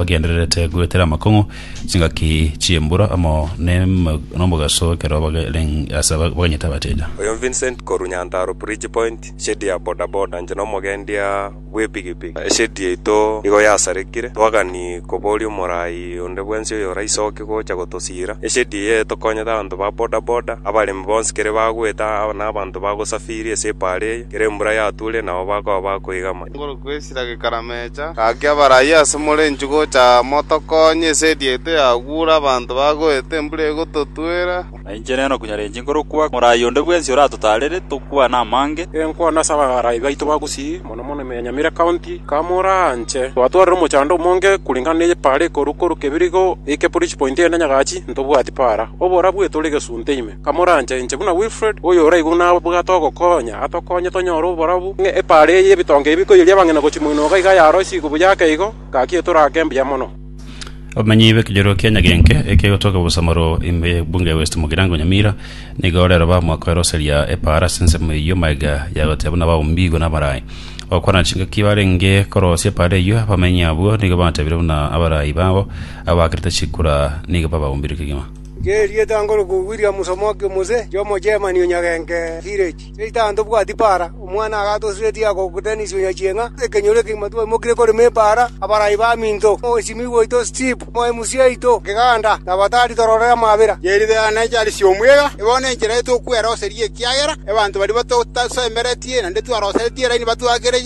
Bagendererete goetera amakong'u chingaki chi'embura amo n'emo- n'omogaso ekero bagereng- ase aba- baganyete abateja. Oyo Vincent korwa Nyantaro Bridge Point, eshedi ya bodaboda inche na omogendia bw'epigipigi. Eshedi yaito nigo yasarekire, twagania koboria omorai onde bwensi oyoraisoke gocha gotosiira. Eshedi eye etokonyete abanto ba bodaboda, abaremi bonsi kere bagoeta, aba- na abanto bagosafiri ase epaara eye, kera embura yaturia nabo bakoba bakoigama. Ngorokwe Esira gekaramechia, gaki abarai ase more inchuo gocha motokonye, ase erieta yagure abanto bagoeta embura egototwera. Na inche nero nkonyarenche nkorokwa morai onde bwensi oratotaarere tokwane amange. Enkwana ase abarai baito ba Gusii, mono mono ime ya Nyamira County, kamoranche. Twatwarire omochando omonge koreng'ana ne epaara ekorwa korwa Kebirigo goika Police Point ende Nyagachi, ntobwati paara. Oborabu etore gesunte ime. Kamoranche inche buna Wilfred, oyoraigwe buna abwate ogokonya, atokonye tonyore oborabu, ng'a epaara eye y'ebitonge ebi koiyeria abang'ina gochia moinoka iga yaroisigwe buya ake igo, gaki etorake mbuya mono. Obomenyi bw'ekenyoro kia Nyagenke ekegotoka Obosamoro ime y'Ebunge ya West Mugirango Nyamira, nigo ore oroba mwakoeroseria epaara ase ensemo eyio magega yagoteba buna baumbiigwe n'abarai. Bagokwana chingaki barenge korosia epaara eyio, abamenyi abwo nigo batebire buna abarai babo abakerete chikura nigo babaumbire kegima. Ng'erieta ngoroku Williams omoke o Mose, inche Omogermani o Nyagenke Village, seita aye ntobwati epaara, omwana agatosiretie agoku Dennis o Nyachieng'a, ekenyoro ekegima twaimokirie korema epaara, abarai baminto, omosimiwa oito Steve, omoemusi oito keganda, na abatari tororere amabera. Ng'erite aya ne Charles omwega, e bono enchera eye tokweroseria ekiagera abanto baria batotasemeretie naende twaroseretie eraini batwakere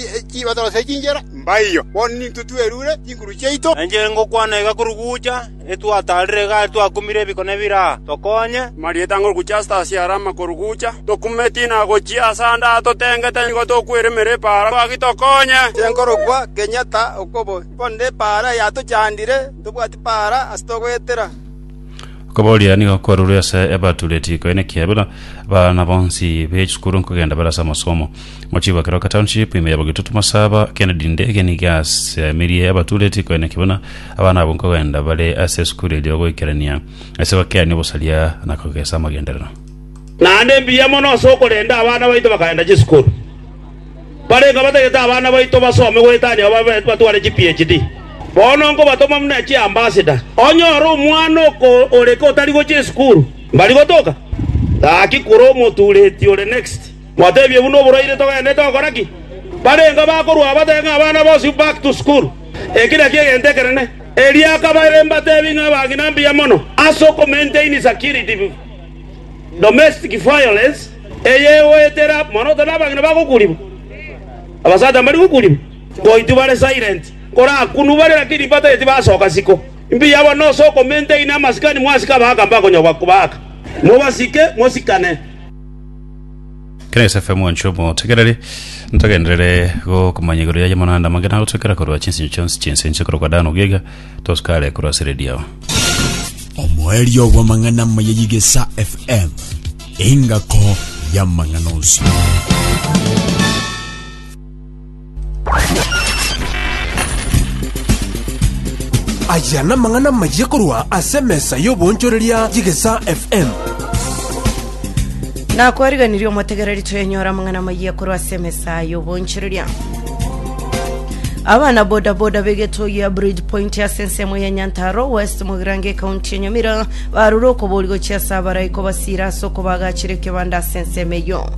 batoroserie chinchera, mbaiyo. Bono nintwe twerure chinguru chiaito. Enchera ngokwana iga korugucha. Etwataarire igare twakumire ebikone bire aa, tokonye.” Marieta ng'a ore gochia Lasarasi are amakorugucha, tokumeti na gochia ase ande aa totengete, nigo tokweremera epaara, gaki tokonye. Tinkorokwa kenyatta okobo, korende epaara yatochandire, ntobwati paara ase togoetera. Okobooria nigo kwarurwe ase Ebatureti, koineki Ebila, abana bonsi be chisukuru nkogenda bare ase amasomo. Mochiba Keroka Township ime ya Bogetutu Masaba, Kennedy Ndege nigo asemirie abatureti koeneki buna abana abo nkogenda bare ase esukuru erio goikerania ase bakeani obosaria na kogesa amagenderero. Naende mbuya mono ase okorenda abana baito bakaenda chisukuru. Mbarengeo batagete abana baito basome goetania babe batware chi PHD. Bono nkobatoma buna chi ambassador. Onyore omwana oko oreke otari gochia esukuru, mbari gotoka? Gaki kura omotureti ore next. Gwateebia buna oboraire togenderete gokora ki? Barenge bakorua batebe ng'a abana bonsi back to school. Eki nakio egento ekenene. Erio akabaira embatebi ng'a abang'ina mbuya mono ase oko maintain security domestic violence eye egoetera mono otabe abang'ina bagokuurigwa, abasacha mbari gokuurigwa. Goitwa bare silent korakunwa bare lakini mbatageti basoka siko. Mbuya bono ase oko maintain amasikani mwasika abagaka mbakonyora gobaaka. Mobasike mosikane. Grace FM wancho omotegereri ntogenderere gokumanya igoro yaye monanda mange nagotwekera korwa chinsinyo chionsi chinse inche korokwa Dan Ogiega tosikare korwa ase redio yao omoerio bw'amang'ana amaya y'egesa fm engako y'amang'ana onsi Aya namang'ana amayia korwa ase emesa y'oboonchoreria y'Egesa FM. Nakwariganirie omotegereri twenyora amang'ana amayia korwa ase emesa y'oboonchoreria abana bodaboda begeto ya bridge point ase ensemo ya nyantaro west mogirange ekaunti ya nyamira barure okobori gochia ase abaraiko basira ase okobagachire ekebanda ase ensemo eyo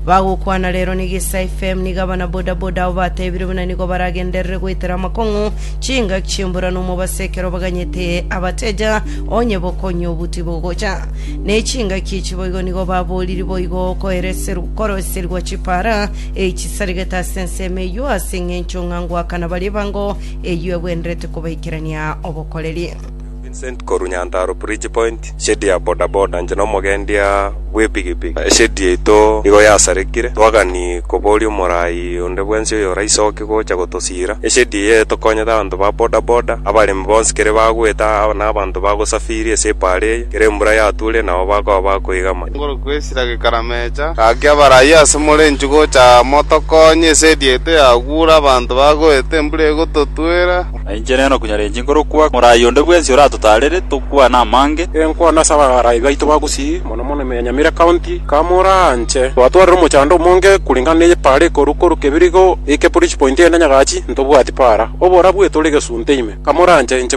Bagokwana rero nigo Isai FM, nigo abana bodaboda abo batebire buna nigo baragenderere goetera amakong'u, chingaki chi'embura na omobasi ekero baganyete abateja onye bokonywa obuti bogocha. Ne chingaki echi boigo nigo baboriri boigo koereserw- koroserigwa chipara eh, chisarigete ase ensemo eyio ase eng'encho ng'a ngoakana baria ebango eyio egwenderete kobaikerania obokoreri. Vincent korwa Nyantarua Bridge Point, shedi ya boda boda, inche na omogendia bw'epigipigi. Eshedi yaito nigo yasarekire, twagani koboria omoraai onde bwensi oyoraisoki gocha gotosiira. Eshedi eye etokonyete abanto ba boda boda, abaremi bonsi kere bagwete, na abanto bagosafiri ase epaara eye, kera embura yaturia nabo bakoba bakoigama. Igoro kwesira gekaramecha, gaki abarai ase more inchugucha motokonye, eshedi yaito yagura, abanto bagwete, embura egototwera. Na inche nere nokonyarenche nkorokwa, morai onde bwensi oratotaarere, tokwane amange. Enkwana ase abarai baito ba Gusii, mono mono ime ya Nyamira County, kamoraanche. Twatwarire omochando omonge koreng'ana ne epaara ekoru korwa Kebirigo goika Police Point ende Nyagachi, ntobwati paara. Oborabu etore egesunte ime. Kamoraanche, inche.